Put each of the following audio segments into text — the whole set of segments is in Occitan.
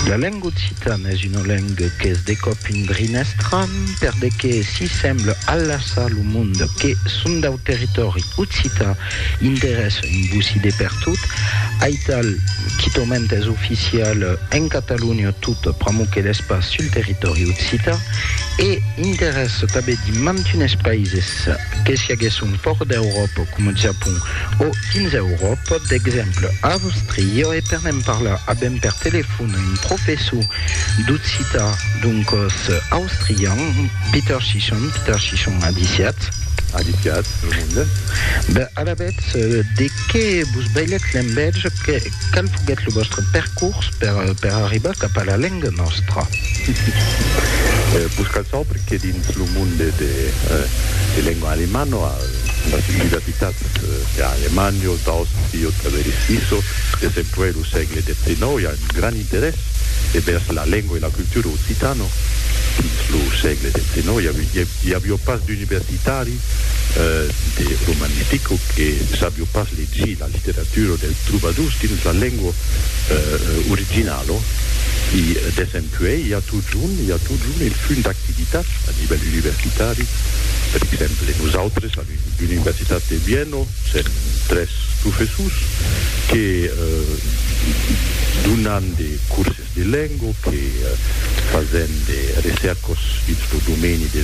La lenga occitana es una lenga qu'es de còp un brin estran per de que si sembla alassar lo monde que son dau territòri occitan interessa un bocí de pertot, aital quitament es oficial en Catalonha tot pr'amor que l'es pas sul territòri occitan e interessa tabedimant unes paises. Que si aguèsse un pòrt d'Euròpa coma Japon o dins Euròpa, d'exemple Àustria, e per ne'n parlar avèm per telefòn un professor d'occitan d'un còrs austrian, Peter Chichon. Peter Chichon, adiciatz. Adiciatz, lo monde. Ben, alavetz, de qué vos bailètz l'envèja? Qual foguèt lo vòstre percors per arribar cap a la lenga nòstra? Pus cal saber que dins lo monde de lenga alemana, las universitats per alemands daus sieu travèrs Suïssa de sempuèi lo sègle XIX i a un grand interès envèrs la lenga e la cultura occitana. Dins lo sègle XIX i aviá pas d'universitari de romanistica que sabiá pas legir. La literatura dels trobadors dins la lengua originala i desempuèi i a totjorn, i a totjorn el funt d'activitats a nivèl universitari. Per exemple, nosautres a l'Universitat de Viena sèm tres professors que donan de curses. Bilengo que, fasent de recèrcos dins lo domeni de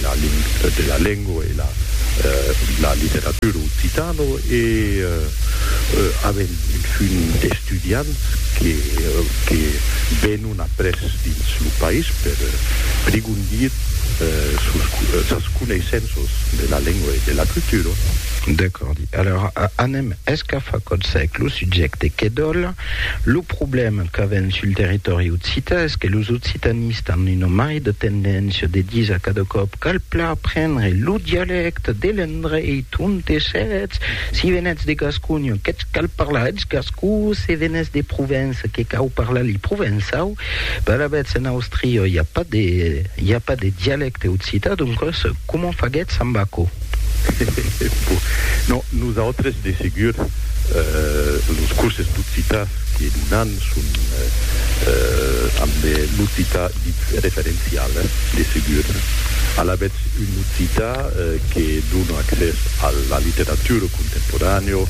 la lengo e la literatura occitano e avent un fum d'estudiants que venon après dins lo país per prigondir sus sas coneissenças de la lengo e de la cultura. Decordi. Alora anem escafar còth sec lo subjècte que dòla Lo problèma qu'avèm sul territòri occità es que los occitanistes an una mai de tendéncia de disar cada còp cal plan prendre lo dialècte de l'endreit onte sètz, si venètz de Gasconha que'tz cal parlar eth gascon, se venètz de Provença que cau parlar li provençau, Per avètz en Austria i a pas de i a pas de dialècte occitan doncas comment faguètz amb aquò? Bon, non, nosautres de segur los curses d'occitan que donam son amb l'occitan dit referencial de segur. Alavetz un occitan que dona accès a la literatura contemporanèo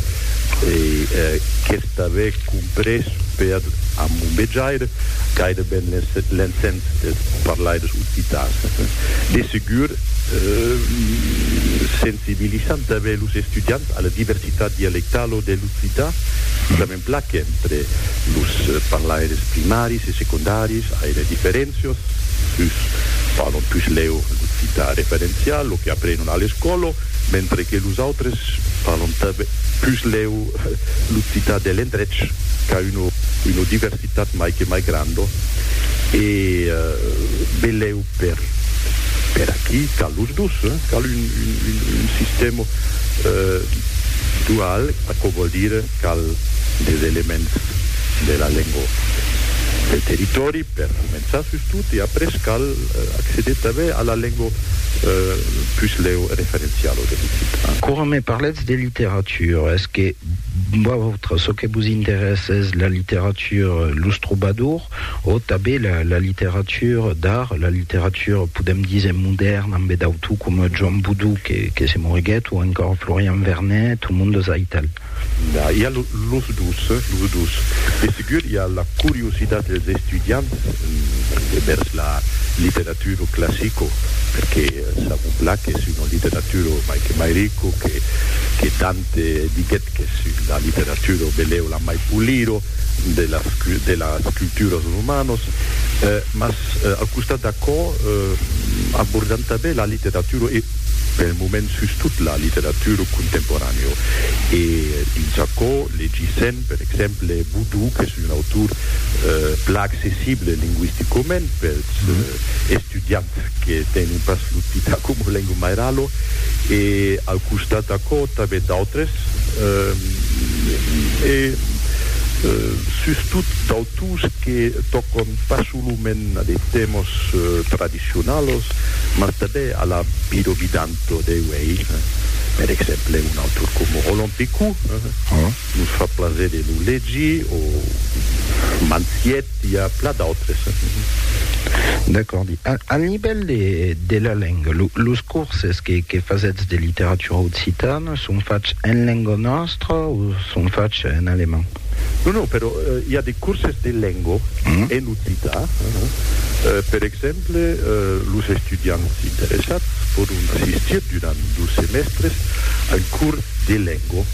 e qu'es T'avè comprés per amombejaire gaireben l'encens des parlaires occitans. De segur, sensibilizant tanben los estudiants a la diversitat dialectalo de l'occitan, sujament plan qu'entre los parlaires primaris e secondaris ai de diferéncias, uns parlan pus lèu l'occitan referencial, lo que aprenon a l'escòla, mentre que los autres parlan tanben pus lèu. L'occitan de l'endrech qu'a una diversitat mai que mai granda e benlèu per aquí cal los dos, cal un sistèma dual, aquò vòl dire cal des elements de la lenga del territòri per començar sustot e après cal acceder tanben a la lenga puslèu referenciala de l'occitan. Quora me parletz de literatura, Sur es que vautre çò que vos interèsse es la literatura, los trobadors o tanben la la literatura d'art, la literatura podèm díser modèrna ambe d'autors coma Joan Boudou que que se moriguèt o encòra Florian Vernet o Mundo Zaital. Nah, i a lo los dos, los dos. De segur i a la curiositat dels estudiants envèrs la literatura. Litteratura classica, perqué sabon plan qu'es una litteratura mai que mai rica, que que Dante diguèt qu'es una litteratura velèu la mai pulira de las de las culturas romanas, mas al costat d'aquò abordam tanben la litteratura e pel moment sustot la litteratura contemporanèa e dins aquò legissèm per exemple Boudou qu'es un autor plan accessible linguisticament per estudiants que tenon pas l'occita coma lenga mairala e al costat d'aquò tanben d'autres e sustot d'autors que tòcan pas solament a de tèmas tradicionals mas tanben a la vida vidanta de uèi, per exemple un autor coma Roland Picot. Nos fa plaser de lo legir o mansiet i a pla d'autres. D'acordi. Al nivèl de la lenga, los corses que fasètz de literatura occitana son fachs en lenga nòstra o son fachs en alemand? Non, non, però i a de corses de lenga en occità. Per exemple, los estudiants interessats pòdon assistir durant dos semèstres a un cors de lenga. Go.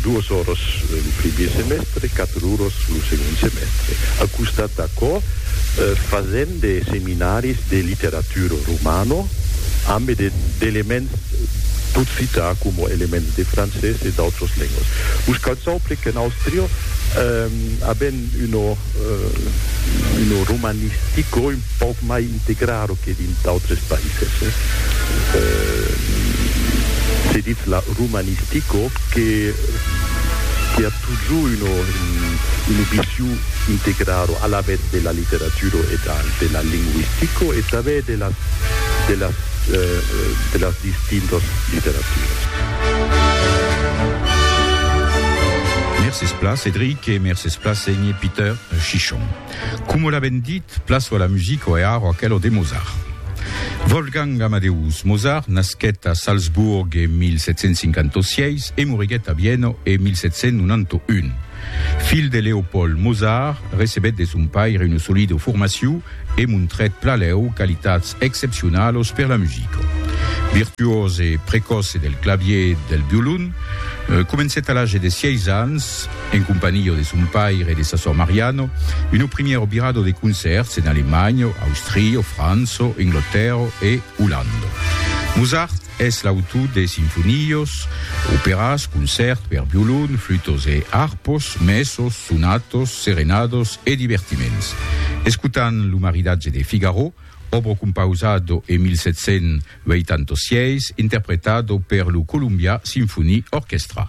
Duos oras lo primier semèstre, quatre oras lo segond semèstre. Al costat d'aquò, fasèm de seminaris de literatura romana ambe d'elements d'occità coma elements de francés e d'autras lengas. Vos cal saupre qu'en Àustria avèm una romanistica, pauc mai integraro que dins d'autres païses. Se ditz la romanistica que que a totjor una una vision integraro alavetz de la literatura e dal de la linguistica e tanben de las de las de las distintas literaturas. Mercés pla Cédric e mercés pla Senge Peter Chichon. Coma l'avèm dit, plaço a la musica o è arro aquela de Mozart. Wolfgang Amadeus Mozart nasquèt a Salzburg en 1756 e moriguèt a Viena en 1791. Filh de Leopold Mozart, recebèt de son paire una solida formacion e montrèt plalau qualitats excepcionalas per la musica. Virtuós e precòce del clavièr e del violon, comencèt a l'age de sièis ans, en companhió de son paire e de sa sòr Mariano, uno primièro birado de concèrts en Alemanha, Austria, França, Englotèrra e Olanda. Mozart es l'autor de sinfonias, operas, concèrts per violon, flutas e arpas, mèsas, sonatas, serenadas e divertiments. Escotam lo maridatge de Figaro, òbra compausada en 1786, interpretada per lo Columbia Symphony Orchestra.